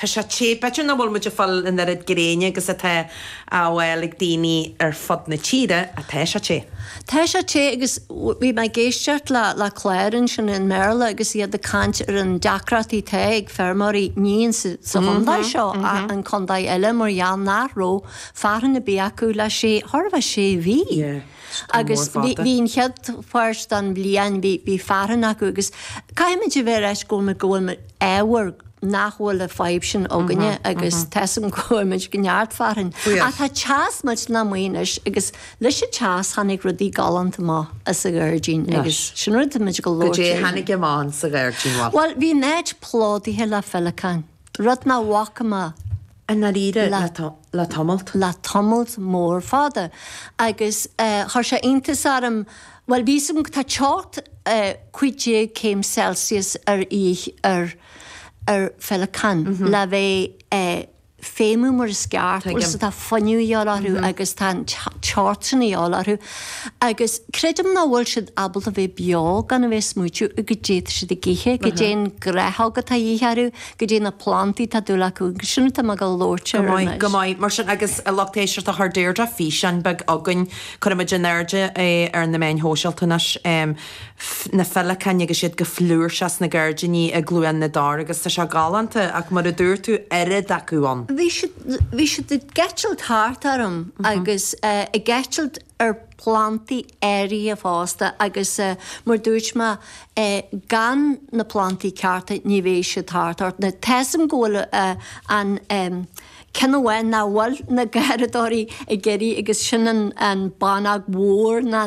Tá sé te. B'fhéidir nach bhfuil muid ag fáil an oiread gréine agus atá á fháil ag daoine ar fud na tíre ach tá sé te. Tá sé te agus bhí mé ag éisteacht le clár ansin i mBéarla agus iad ag caint ar an deacracht atá ag feirmeoirí, ní sa chontae seo ach in contaetha eile mar gheall nach raibh fearthainn ar bith acu le sé, thart fá sé mhí. Agus bhí an chéad pháirt don bhliain, bhí fearthainn acu agus caithfimid a bheith ar ais go bhfuil muid ámharach nach bhfuil an fhadhb sin againne agus tá's a'm go bhfaigheann muid neart fearthainn. Ach tá teas muid ná maoth anois agus leis an teas tháinig rudaí galánta amach as an ngairdín agus sin rud atá muid ag gabháil a labhairt faoi. Goidé tháinig amach sa ghairdín mhaith? Bhuel bhí an áit plódaithe le feileacáin, rud nach bhfaca mé. I ndáiríre, le tamalt. Le tamalt mór fada. Agus chuir sé iontas orm, bhuel, bhí's a'm, tá teocht 15 céim Celsius a dhíth ar feileacán le bheith ag feidhmiú mar is gceart agus tá fuinneamh a dhíobháil orthu agus tá an teocht sin a dhíobháil orthu agus creidim nach bhfuil siad ábalta bheith beo gan a bheith ag smaoitiú goidé atá siad ag ithe, goidé an ghnáthóg atá a dhíth orthu. goidé na plandaí atá dúil acu. Agus sin atá mé ag gabháil a labhairt air anois. Go maith, go maith. Mar sin, agus a lucht éisteachta chuir Deirdre físeán beag chugainn. Cuirfidh muid in airde é ar na meáin shóisialta anois. Na feileacáin agus iad go flúirseach sna gairdíní i gCluain na dTor agus tá sé galánta ach mar a dúirt tú, oiread acu ann. Bhí siad ag eitilt thart orm agus ag eitilt ar plandaí áirithe fosta agus mar a dúirt mé, gan na plandaí cearta ní bheidh siad thart ort. Now tá's a'm go bhfuil an ceann amháin nach bhfuil na garraíodóirí ag iarraidh agus sin an bhánóg mhór, na.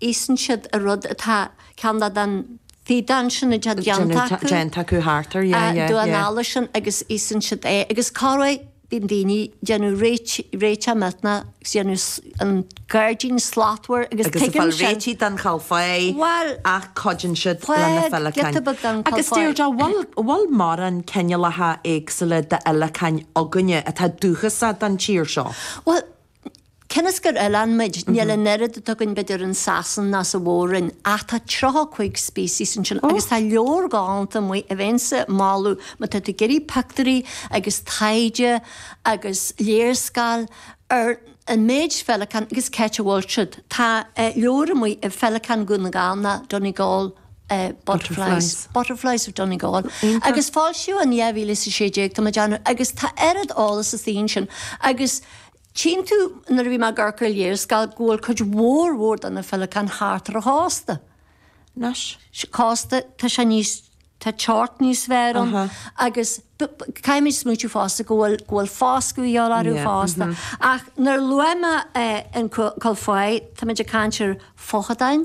íosann siad an rud atá ceann de na fidáin sin a déantar déanta acu thart air, yeah, yeah, yeah. an eala sin agus íosann siad é agus corruair bíonn daoine déanamh réiteach millteanach agus dhéanamh an gairdín slachtmhar agus tuigeann siad. Agus fáil réitigh don chál faiche well, ach cuidíonn siad leis na feileacáin. Agus Deirdre, bhfuil mórán cineálacha éagsúla d'fheileacáin againne atá dúchasach don tír seo? Well, Cionn is gur oileán muid, níl an oiread acu againn b'fhéidir in Sasain ná sa Mhór-Roinn, ach tá tríocha a cúig species ansin agus tá leabhar galánta amuigh a bheinnse a mholadh má tá tú ag iarraidh pioctúirí agus taighde agus léarscáil ar an méid feileacán agus cá háit a bhfuil siad. Tá leabhar amuigh ar feileacáin Dhún na nGall nó Donegal butterflies, butterflies of Donegal agus foilsíodh in 2016 tá mé ag déanamh agus tá oiread eolais ansin agus Tchíonn tú, nuair a bhí mé ag amharc ar léarscáil, go bhfuil cuid mhór mhór de na féileacáin thart ar an chósta. Anois? Cósta, tá sé níos, tá teocht níos fearr ann agus caithfimid smaointiú fosta go bhfuil, go bhfuil foscadh a dhíobháil orthu fosta. Ach nuair a luaigh mé an cúl fáith, táimid ag caint ar feochadáin.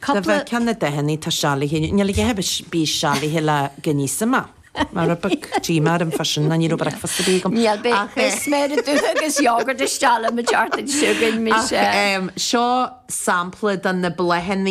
Cupla. Dá bhfeictheá na deicheannaí atá séalaithe inniu, níl a dhath ar bith séalaithe le giní sa mba. Mar a bheadh díomá orm fá sin, ná ní raibh bricfeasta ar bith agam. Níl, beidh sméara dubha agus yogurt isteach le mo dheartháir sin againn, mise. Ach seo sampla de na bláthanna.